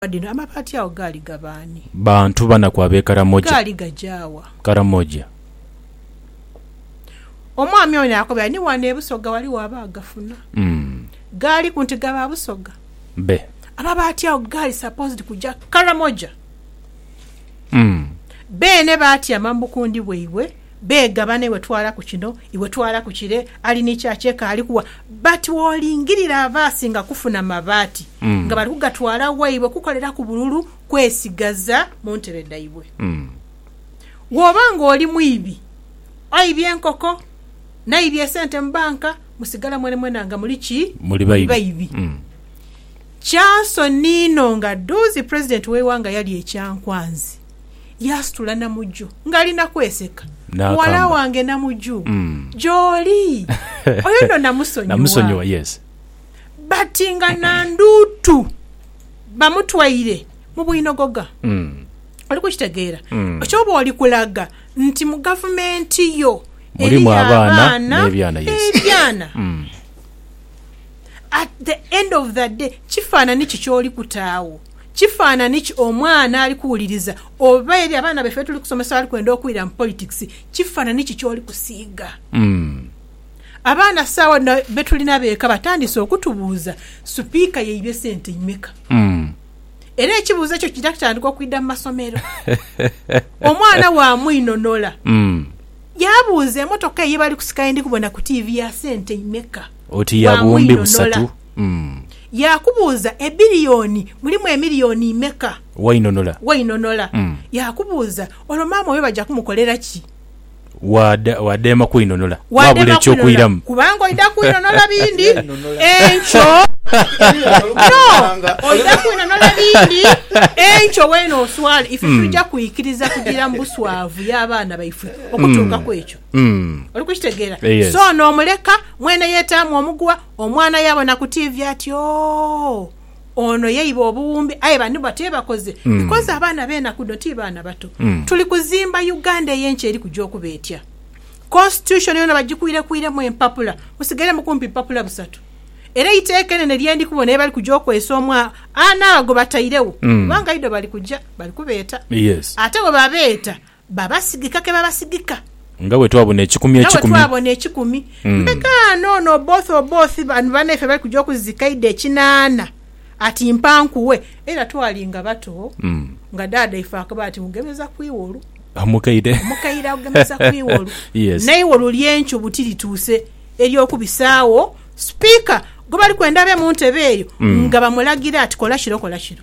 Ensonga dhino amabaati agho gaali ga baani? Bantu banaku ab'e Karamoja. Gaali gaja wa? Karamoja. Omwami ono yaakobera, Ni wano e Busoga ghaligho abaagafuna. Gaaliku nti ga Baabusoga? Be. Amabaati agho gaali supposed kuja Karamoja. Beene baatyama mu bukundi bwaibwe. beega bano iwe twala ku kino iwe twala ku kire ali ni kya kye kaali kuwa but wolingirira ava asinga kufuna mabaati nga bali kugatwala waibwe kukoleraku bululu kwesigaza mu ntebe dhaibwe. Woba nga oli mwibi aibye enkoko naibye esente mu banka musigala mwenamwena nga muli ki? Muli baibi. Kyansonii inho nga dhuuzi president we iwanga yalya ekyankwanzi. Yaasitula Namuju ng'ali na kweseka. Muwala Naakamba. wange Namuju, gy'oli. Oyo nno namusonyiwa. Namusonyiwa, yes. But nga Nandutu bamutwaire mu bwinogoga. Oli kukitegeera? Ky'oba oli kulaga nti mu gavumenti yo Mulimu eriyo abaana abaana n'ebyana, yes. n'ebyana. At the end of the day, kifaanani ki ky'oli kuta agho? Kifanhanhi ki omwana ali kuwuliriza? Oba eri abaana baife be tuli kusomesa abali kwenda okwira mu politics, kifanhanhi ki ky'oli kusiiga? Abaana saagho dhino be tulina b'eka batandise okutubuuza, Supiika yaibye sente imeka? Era ekibuuzo ekyo kiidha kitandika okwidha mu masomero. Omwana waamwinhonhola yaabuuza, Emotoka eyo ye bali kusika ye ndi kubona ku tiivi ya sente imeka? Oti ya Bwangu buwumbi busatu. inhonola. Umm. Yaakubuuza, Ebbiliyoni mulimu emiliyoni imeka? Wainhonola. Wainhonola. Umm. Yaakubuuza, Olwo maama oyo baja kumukolera ki? Waada, waadheema kwinhonola. Waabula Waadheema kwinhonola eky'okwiramu. kubanga oidha kwinhonola bindi enkyo. No, oidha kwinhonola bindi enkyo weene oswale. Ife twija kwikiriza kugira mu buswavu y'abaana baifwe okutuuka ku ekyo? Mm. Oli kukitegeera? Eh, yes. So n'omuleka, mwene yeetaamu omuguwa, omwana yaabona ku tiivi ati, Oh, ono ye iba obuwumbi. Aye bano batyo ye bakoze. Mm. Because abaana b'enaku dhino ti baana bato. Mm. Tuli kuzimba Uganda ey'enkya eri kuja okuba etya? Constitution yoona bagikwirekwiremu empapula, musigairemu kumpi bupapula busatu. Era eiteeka enene lye ndi kubona ye bali kuja okwesa omwa anaagho gwe batairegho, Mm. kubanga idho bali kuja, bali kubeeta. Yes. Ate bwe babeeta, Babasigika ke babasigika. Nga bwe twabona ekikumi ekikumi. Nga bwe twabona ekikumi. Mbe kaano ono Oboth Oboth bano banaife bali kuja okuzika idho ekinaana ati mpa nkuwe. Era twali nga bato nga daada ife akaba ati mugemeza ku iwolu. Omukaire. Omukaire agugemeza ku iwolu. Yes. Neiwolu lyencubu tilituuse ery'okubisaagho Speaker gwebali kwenda abe muntebe eyo nga bamulagira ati kola kiro kola kiro.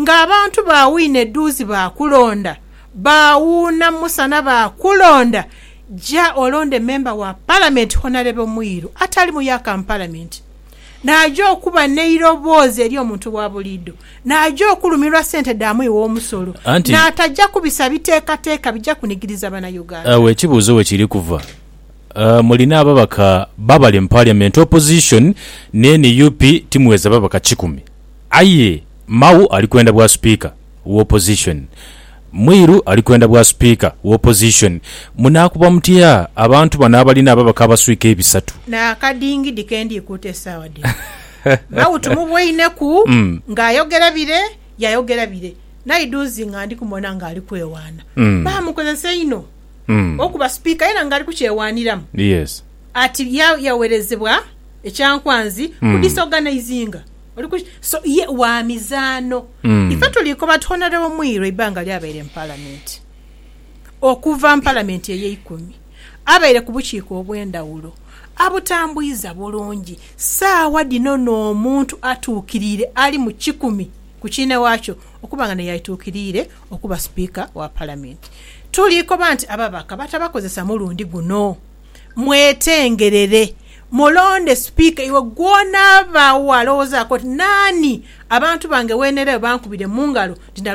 ng'abantu baawuina edhuuzi baakulonda, baawuuna musana baakulonda, ja olonde memba wa Palamenti Honarebo Mwiru atali muyaka mu Palamenti, naaja okuba n'eiroboozi eri omuntu wa buliidho, naaja okulumirwa sente dha mwi w'omusolo, Anti. naataja kubisa biteekateeka bija kunigiriza Banauganda. Agho ekibuuzo we kiri kuva, mulina ababaka babale mu Parliament, Opposition ne nup timuweza babaka kikumi. Aye Mao ali kwenda bwa Speaker wa opposition. Mwiru ali kwenda bwa Speaker wa opposition. Munaakuba mutya abantu bano abalina ababaka abaswika ebisatu? N'akadingidi ke ndi kuuta esaawa dhino. Mao tumuboineku ng'ayogera bire, yayogera bire. Naidhuuzi nga ndi kumubona ng'ali kwewaana. Baamukozesa inho okuba Speaker aye era ng'ali kukyewaaniramu. Ati yawerezebwa ekyankwanzi ku disorganising. Oli ku ki? So ye wa mizaano. Mm. Ife tuliikoba twonalewo mwiro eibanga ly'abaire mu Palamenti. Okuva mu Palamenti ey'eikumi, abaire ku bukiiko obw'endhawulo, abutambwiza bulungi. Saagha dhino n'omuntu atuukiriire ali mu kikumi ku kiina waakyo okuba nga naye aituukiriire okuba Sipiika wa Palamenti. Tuliikoba nti ababaka batabakozesa mulundi guno. mwetengerere mulonde sipiika iwe gw'onaaba walowoozaaku oti, Naani abantu bange Weneraghe bankubire mu ngalo nti ndalwana?